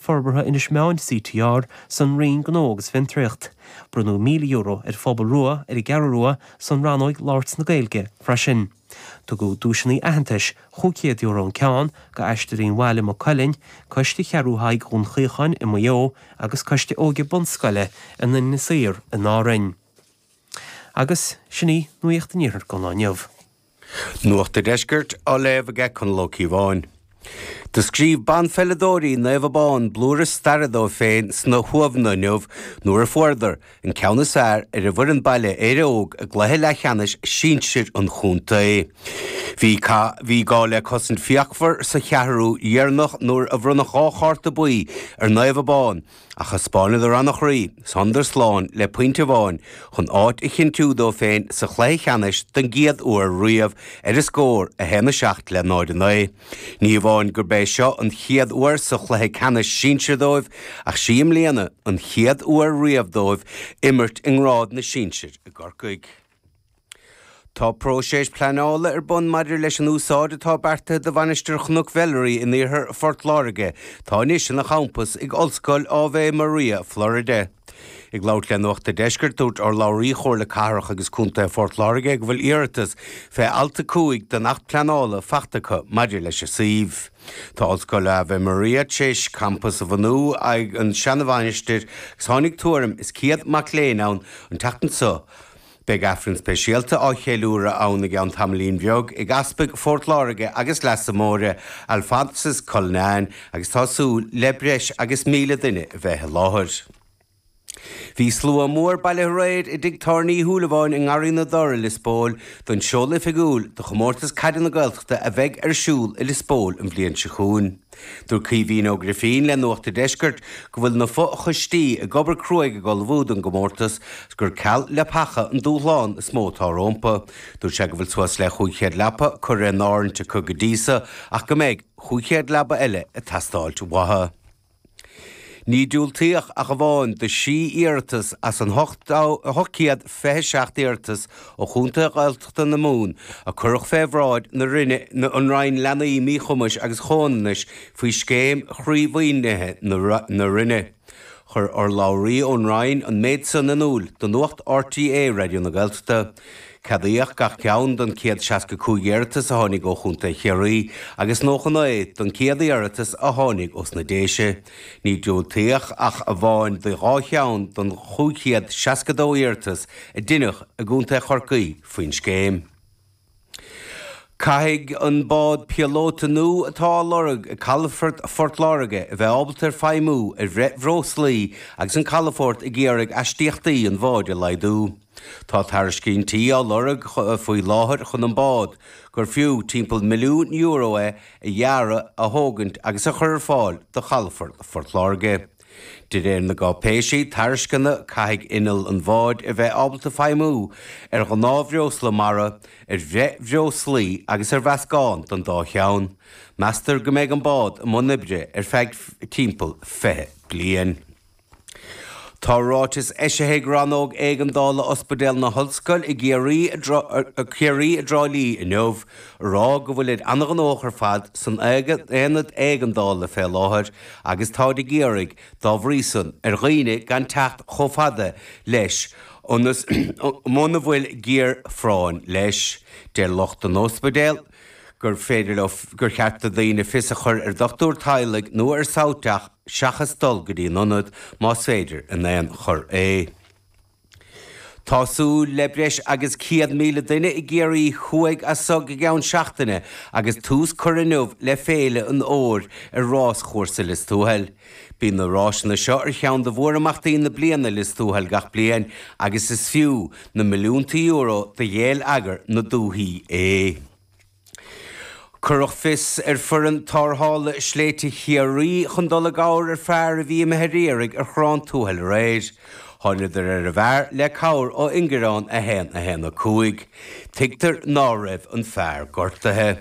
Forbartha Inis Meáin, CTR, san Roinn Gnó agus Fiontraíocht. Bronnadh €1,000 ar Phobal Rua ar an gCeathrú Rua san rannóig Labhairt na Gaeilge freisin. Tugadh duaiseanna aitheantais, €500 an ceann, go Aisteoirí Mhaigh Cuilinn, Coiste Cheathrú Thaidhg Dún Chaocháin i Maigh Eo agus Coiste Óige Bunscoile Inis Oírr in Árainn. Agus sin í nuacht an Iarthair go Luan. Nuacht a' Deiscirt á léamh aige Conall Ó Ciobháin. Do scríobh banpheileadóirí Naomh Abán blúire staire dóibh féin sna hUamhanna inniu nuair a fuaireadar an ceann is fearr ar an bhfoireann baile, Éire Óg, i gcluiche leathcheannais sinsear an chontae. Bhí bhí gá le cosaint fíochmhar sa cheathrú dheireanach nuair a bronnadh dhá chárta buí ar Naomh Abán. Ach thaispeánadar an-chroí is thángadar slán le pointe amháin chun áit a chinntiú dóibh féin sa chluiche ceannais don gcéad uair riamh ar an scór 1:07 le 0:09. Ní amháin gurb é seo an chéad uair sa chluiche ceannais sinsir dóibh ach sí i mbliana an chéad uair riamh dóibh imirt i ngrád na sinsear i gCorcaigh. Tá próiseas pleanála ar bun maidir leis an úsáid atá beartaithe do Mhainistir Chnoc Mheilearaí in iarthar Phort Láirge, atá anois ina champas ag Ollscoil Ave Maria, Florida. Ag labhairt le Nuacht a' Deiscirt, dúirt urlabhraí Chomhairle Cathrach agus Contae Phort Láirge go bhfuil iarratas fé alt 5 den Acht Pleanála faighte acu maidir leis an suíomh. Tá Ollscoil Ave Maria tar éis campas a bhunú ag an seana-mhainistir agus tháinig tuairim is 100 mac léinn ann an tseachtain seo. Beidh Aifreann speisialta á cheiliúradh ann i gceann tamaillín bheag ag Easpag Phort Láirge agus Leasa Móire, Alphonsus Cullinan agus tá súil le breis agus míle duine a bheith i láthair. Bhí slua mór bailithe aréir i dTigh Tábhairne Uí Shúilleabháin i nGarraí na dTor i Lios Póil don seoladh oifigiúil do chomórtas caide na Gaeltachta a bheidh ar siúl i Lios Póil an bhliain seo chugainn. Dúirt Caoimhín Ó Grifín le Nuacht an Deiscirt go bhfuil na fo-choistí ag obair cruaidh ag ullmhú don gcomórtas agus gur ceal leapacha an dúshlán is mó atá rómpu. Dúirt sé go bhfuil suas le 500 leapa curtha in áirithint acu go dtí so ach go mbeidh 500 leaba eile ag teastáilt uathu. Níor diúltaíodh ach amháin do thrí iarratas as na hocht gcéad fiche seacht iarratas ó chontaetha Gaeltachta na Mumhan, a cuireadh fé bhráid na Roinne na an Roinn Leanaí Míchumais agus Comhionannais faoi scéim chroímhaoinithe na Roinne. Chuir urlabhraí ón Roinn an méid san in iúl do Nuacht RTÉ Raidió na Gaeltachta. Ceadaíodh gach ceann den 165 iarratas a tháinig ó Chontae Chiarraí agus 99 den 100 iarratas a tháinig os na Déise. Níor diúltaíodh ach amháin do dhá cheann den 562 iarratas a deineadh i gContae Chorcaí faoin scéim. Caithfidh an bád píolóta nua atá á lorg ag Calafort Phort Láirge a bheith ábalta ar feidhmiú ar bhithbhreoslaí agus an calafort ag iarraidh astaíochtaí an bháid a laghdú. Tá tairiscintí á lorg faoi láthair chun an bád, gur fiú timpeall milliún euro é, a dhearadh, a thógaint agus a chur ar fáil do chalafort Phort Láirge. De réir na gcáipéisí tairisceana caithfidh inneall an bháid a bheith ábalta feidhmiú ar ghnáthbhreosla mara, ar bhithbhreoslaí agus ar mheascán den dá cheann. Meastar go mbeidh an bád i mbun oibre ar feadh timpeall 20 bliain. Tá ráiteas eisithe ag Rannóg Éigeandála Ospidéal na hOllscoile Ciarraí i dTrá Lí inniu a rá go bhfuiltear an-ghnóthach ar fad san aonad éigeandála fé láthair agus táid ag iarraidh dá bhrí san ar dhaoine gan teacht chomh fada leis mura bhfuil géarphráinn leis. Deir lucht an ospidéil gur féidir gur cheart do dhaoine fios a chur ar dhochtúir teaghlaigh nó ar SouthDoc seachas dul go dtí an ionad, más féidir in aon chor é. Tá súil le breis agus 100,000 duine i gCiarraí thuaidh as so go gceann seachtaine agus tús curtha inniu le Féile an Fhómhair ar Rás-chúrsa Lios Tuathail. Bíonn na ráiseanna seo ar cheann de mhórimeachtaí na bliana i Lios Tuathail gach bliain agus is fiú na milliúnta euro do gheilleagar na dúthaí é. Cuireadh fios ar Fhoireann tarrthála sléibhte Chiarraí chun dul i gcabhair ar fhear a bhí imithe ar iarraidh ar Chorrán Tuathail aréir. Tháiniodar ar an bhfear le cabhair ó Ingearán 1, 1, 5. Tuigtear ná raibh an fear gortaithe.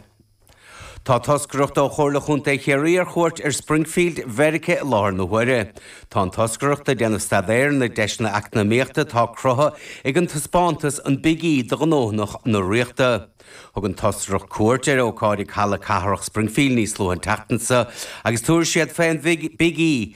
Tá toscaireacht ó Chomhairle Chontae Chiarraí ar chuairt ar Springfield, Mheiriceá i láthair na huaire. Tá an toscaireacht ag déanamh staidéir ar na deiseanna eacnamaíochta atá cruthaithe ag an taispeántas An Big E do ghnóthaí na Ríochta. Thug an toscaireacht cuairt ar ócáid ag Halla Cathrach Springfield níos luaithe an tseachtain seo agus tabharfaidh siad fé an Big E